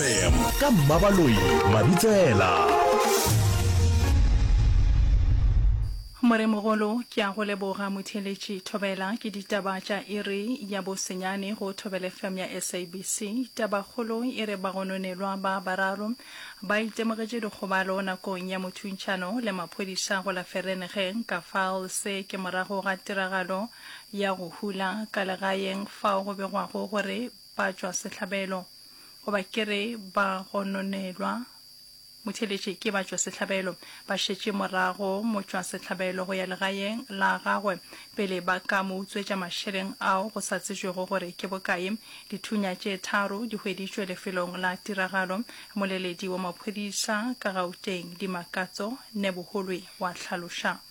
fm ka mmabaloi mabitsela Moremogolo ke a go leboga motheeletši Thobela ke ditaba tša iri ya bosenyane go Thobela FM ya SABC. Tabakgolo e re bagononelwa ba bararo ba itemogetše dikgobalo nakong ya mothuntšhano le maphodisa go la Vereeniging ka Vaal se ke morago ga tiragalo ya go hula ka legaeng fao go begwago gore ba tšwa sehlabelo, goba ke re ba gononelwa, motheeletše ke ba tšwa sehlabelo, ba šetše morago motšwa sehlabelo go ya legaeng la gagwe pele ba ka mo utswetša mašeleng ao go sa tsejwego gore ke bokae. Dithunya tše tharo di hweditšwe lefelong la tiragalo, Moleledi wa maphodisa ka Gauteng, Dimakatso Neboholwe wa hlaloša.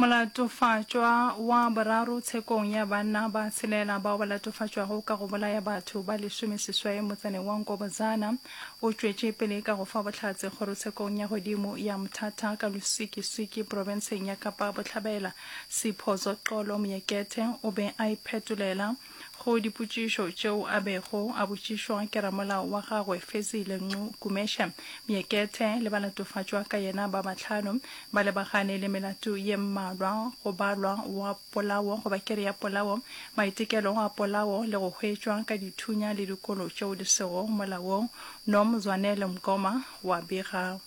Molatofatšwa wa boraro tshekong ya banna ba tshelela bao ba latofatšwago ka go bolaya batho ba lesome seswai motsaneng wa Nkobozana o tšwetše pele ka go fa bohlatse kgorotshekong ya godimo ya Mthatha ka Lusikisiki profenseng ya Kapa Bohlabela. Siphozo Xolo Moekethe o be a iphetolela go dipotšišo tšeo a bego a botšišwa ke ramolao wa gagwe Fezile Nqu Gumeshe. Myekethe le ba latofatšwa ka yena ba bahlano ba lebagane le melato ye mmalwa, go balwa wa polao goba kere ya polao, maitekelo a polao le go hwetšwa ka dithunya le dikolo tšeo di sego molaong, Nom Zwanele Mgoma wa bega.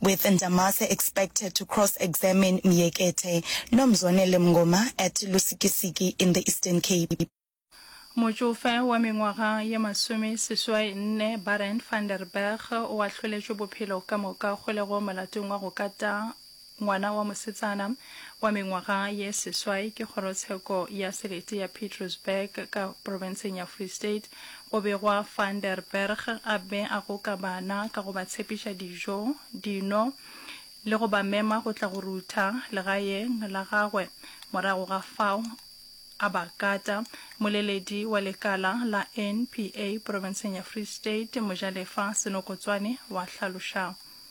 with Ndamase expected to cross examine Myekete no Mzwanele Mngoma at Lusikisiki in the Eastern Cape. Motšofe wa mengwaga ye masome seswai nne Barend van der Berg o ahloletšwe bophelo ka moka kgolego molatong wa go kata ngwana wa mosetsana wa mengwaga ye seswai ke kgorotsheko ya selete ya Pietersburg ka profenseng ya Free State Go begwa Van der Berg a be a goka bana ka go ba tshepiša dijo, dino le go ba mema go tla go rutha legaeng la gagwe. Morago ga fao a ba kata. Moleledi wa lekala la NPA profenseng ya Free State, Mojalefa Senokotswane wa hlaloša.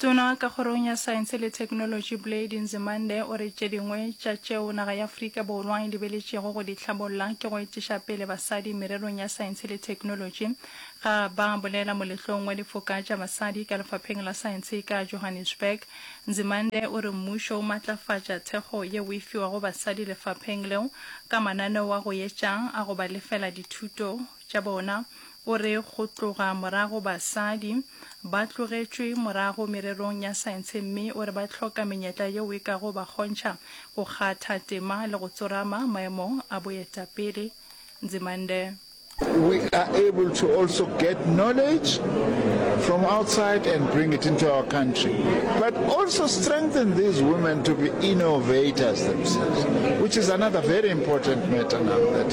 Tona ka Kgorong ya Saense le Theknolotši Blade Nzimande o re tše dingwe tša tšeo naga ya Afrika Borwa e lebeletšego go di hlabolla ke go etiša pele basadi mererong ya saense le theknolotši. Ga ba bolela moletlong wa difoka tša basadi ka lefapheng la saense ka Johannesburg, Nzimande o re mmušo o matlafatša thekgo yeo e fiwago basadi lefapheng leo ka mananeo a go etša a go ba lefela dithuto tša bona. O re go tloga morago basadi ba tlogetšwe morago mererong ya saentshe mme o re ba hloka menyetla yeo e kago ba kgontšha go kgatha tema le go tsorama maemong a boetapele. Nzimande. We are able to also get knowledge from outside and bring it into our country, but also strengthen these women to be innovators themselves, which is another very important matter now that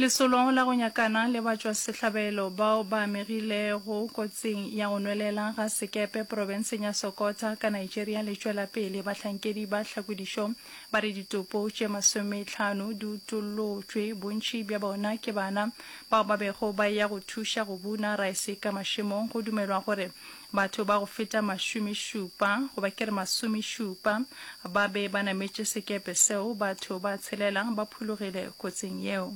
Lesolo la go nyakana le batšwasehlabelo bao ba amegilego kotsing ya go nwelela ga sekepe profenseng ya Sokota ka Nigeria le tšwela pele. Bahlankedi ba tlhakodišo ba re ditopo tše masometlhano di utollotšwe, bontši bja bona ke bana bao ba bego ba eya go thuša go buna raese ka mašemong go dumelwa gore Batho ba go feta mašomešupa, goba ke re masomešupa, ba be ba nametše sekepe seo. Batho ba tshelela ba phologile kotsing yeo.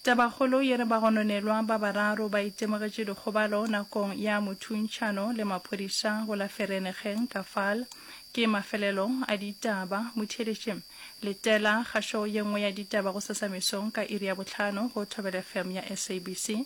Tabakgolo e re bagononelwa ba bararo ba itemogetše dikgobalo nakong ya mothuntšhano le maphodisa go la Vereeniging, Kafal. Ke mafelelo a ditaba. Motheeletši, letela kgašo ye nngwe ya ditaba go Sesamesong ka iri ya bohlano go Thobela FM ya SABC.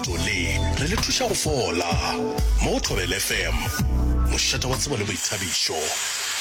Leeto le re le thuša go fola. Mo go Thobela FM, mošate wa tsebo le boithabišo.